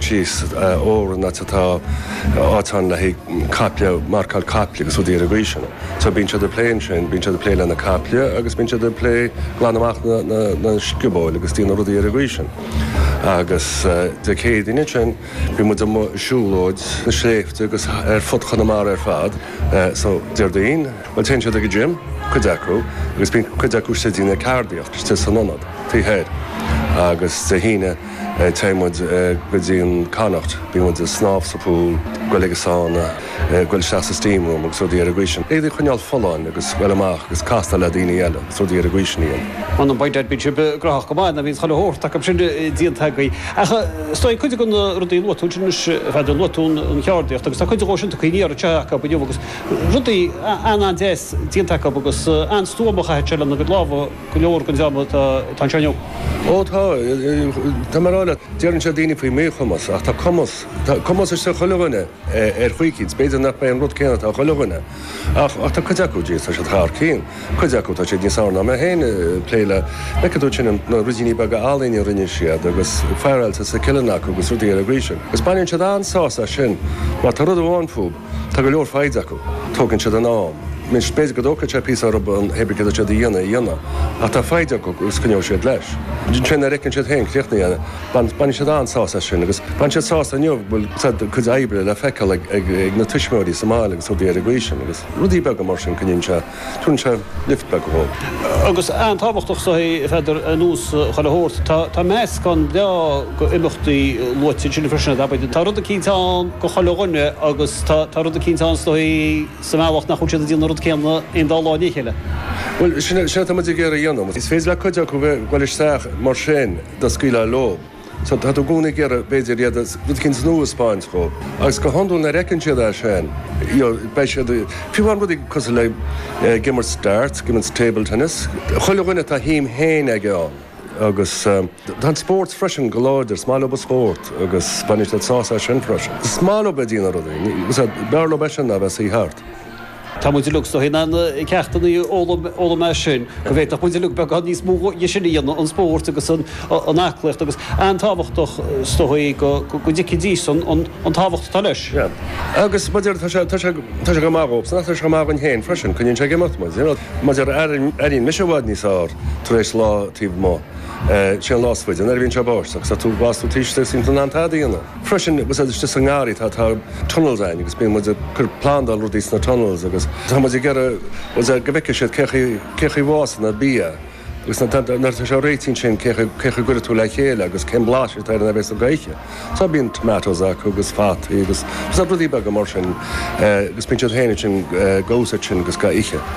síos Órán áit atá áit ann le haghaidh caiple, marcáil caiple agus rudaí ar an gcaoi sin. So bíonn siad ag plé ansin, bíonn siad ag plé lena caiple agus bíonn siad ag plé glanadh amach na na na sciobóil agus déanamh rudaí ar an gcaoi sin. Agus Dé Céadaoin ansin bhí muid amuigh ag siúlóid sna sléibhte agus ar fud Chonamara ar fad. So Déardaoin, bhuel téann siad ag an gym, cuid acu, agus bíonn cuid acu istigh ag déanamh ceardaíocht istigh san ionad, taobh thoir. Agus Dé hAoine. Téann muid go dtí an Connacht, bíonn muid ag snámh sa pool, goil ag an sauna, goil isteach sa steam room agus rudaí ar an gcaoi sin. Iad a choinneáil folláin agus goil amach agus castáil le daoine eile agus rudaí ar an gcaoi sin a dhéanamh. Muna mbeidh dad beidh sibh graitheach go maith, nó bhíonn chuile shórt acu sin déanta agaibh. Ach is dóigh cuid de na rudaí a luaigh tú ansin anois, Pheadair luaigh tú an cheardaíocht agus tá cuid dhó sin tugthaí aniar anseo acu inniu agus rudaí an-an-deas déanta acu agus an-stuama a chaithfeas siad a bheith lena gcuid lámha. Go leor den dream atá anseo inniu. Ó tá, tá mé ag rá leat, deireann siad daoine faoi mhíchumas ach tá cumas, tá cumas istigh i chuile dhuine ar chaoi eicínt, 's b'fhéidir nach mbeidh an rud céanna atá ag chuile dhuine ach, ach tá cuid acu díot, tá siad thar cinn, cuid acu tá siad níos fearr ná mé féin ag plé le, like, a dúirt sin, na ruidíní beaga ealaíne a rinne siad agus faireáilte sa cionn acu agus rudaí eile ar an gcaoi sin. Is baineann siad an-sásamh as sin mar tá rud amháin fúb, Tá go leor foighid acu. Tógann siad a n-am. Anois, b'fhéidir go dtógfaidh sé píosa orthu an obair cibé céard atá siad a dhéanamh a dhéanamh, ach tá foighid acu agus coinneoidh siad leis. Ansin nuair a fheiceann siad héin críochnaithe é, baineann siad an-sásamh as sin agus bhain siad sásamh inniu go bhfuil a gcuid oibre le feiceáil ag na tuismitheoirí sa mbaile agus rudaí ar an gcaoi sin agus rudaí beaga mar sin coinníonn sé Tugann sé lift beag dhóib. Agus an-tábhachtach is dóichí a Pheadair an deis uilig a thabhairt, tá meascán breá go imeachtaí luaite ansin freisin, agaibh. Tá rud eicínt ann go chuile dhuine agus tá rud eicínt ann is dóichí sa mbealach nach bhfuil siad ag déanamh an rud céanna aon dá lá i ndiaidh a chéile. Bhuel, sin é, sin é tá muid ag iarraidh a dhéanamh. Is féidir le cuid acu bheith uilig isteach mar sin dá scaoilfeá leo. Tá tú i gcónaí ag iarraidh, b'fhéidir, iad rud éicint nua a 'speáint dhób, agus go hiondúil nuair a fheiceann siad é sin, you know, beidh siad, fiú amháin rudaí cosúil le ag imirt darts, ag imirt table tennis, chuile dhuine tá a shuim féin aige ann. Agus tá an spórt freisin go láidir, is maith leob an spórt agus baineann siad sásamh as sin freisin. Is maith leob a dhéanamh rudaí, b'fhearr leob é sin ná a bheith ina suí thart. Tá muid uilig is dóichí in ann ceachtanna a fhoghlaim as sin. Go bhféadfadh muid uilig beagán níos mó dhe sin a dhéanamh, an spóirt agus an aclaíocht. Agus an-tábhachtach is dóichí go dtuigfidís an tábhacht atá leis. Yeah. Agus mar a deir, tá sé, tá sé, tá sé go maith dhóbhsan ach tá sé go maith dhuinn fhéin freisin, coinníonn sé ag imeacht muid, you know. Mar a deir, airíonn mise i bhfad níos fhearr tar éis lá taobh amuigh. Sin an lá is faide, nuair a bhíonn sé báisteach, agus tú, bíos tú taobh istigh, is níl tú in ann tada a dhéanamh. Freisin, sa ngarraí atá tunnels a'inn agus bíonn muid ag plandáil rudaí sna tunnels agus tá muid ag iarraidh go bhfeicfidh siad cé chaoi bhfásann an bia agus nuair atá sé réitithe ansin cé chaoi a gcuirfeá le chéile agus cén blais atá air ag deireadh na hoíche. So bíonn tomatoes acu agus fataí agus rudaí beaga mar sin agus bíonn siad féin ansin ag úsaid sin gach oíche.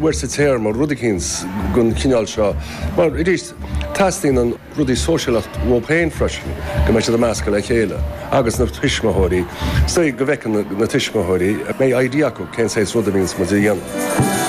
uair sa téarma, rud eicínt gon chineál seo. Mar, arís, teastaíonn na rudaí sóisialta dhóib féin freisin, go mbeidh siad ag meascadh le chéile agus na tuismitheoirí, so go bhfeiceann na tuismitheoirí, go mbeidh idea acu cén saghas rud a bhíonns muid a dhéanamh.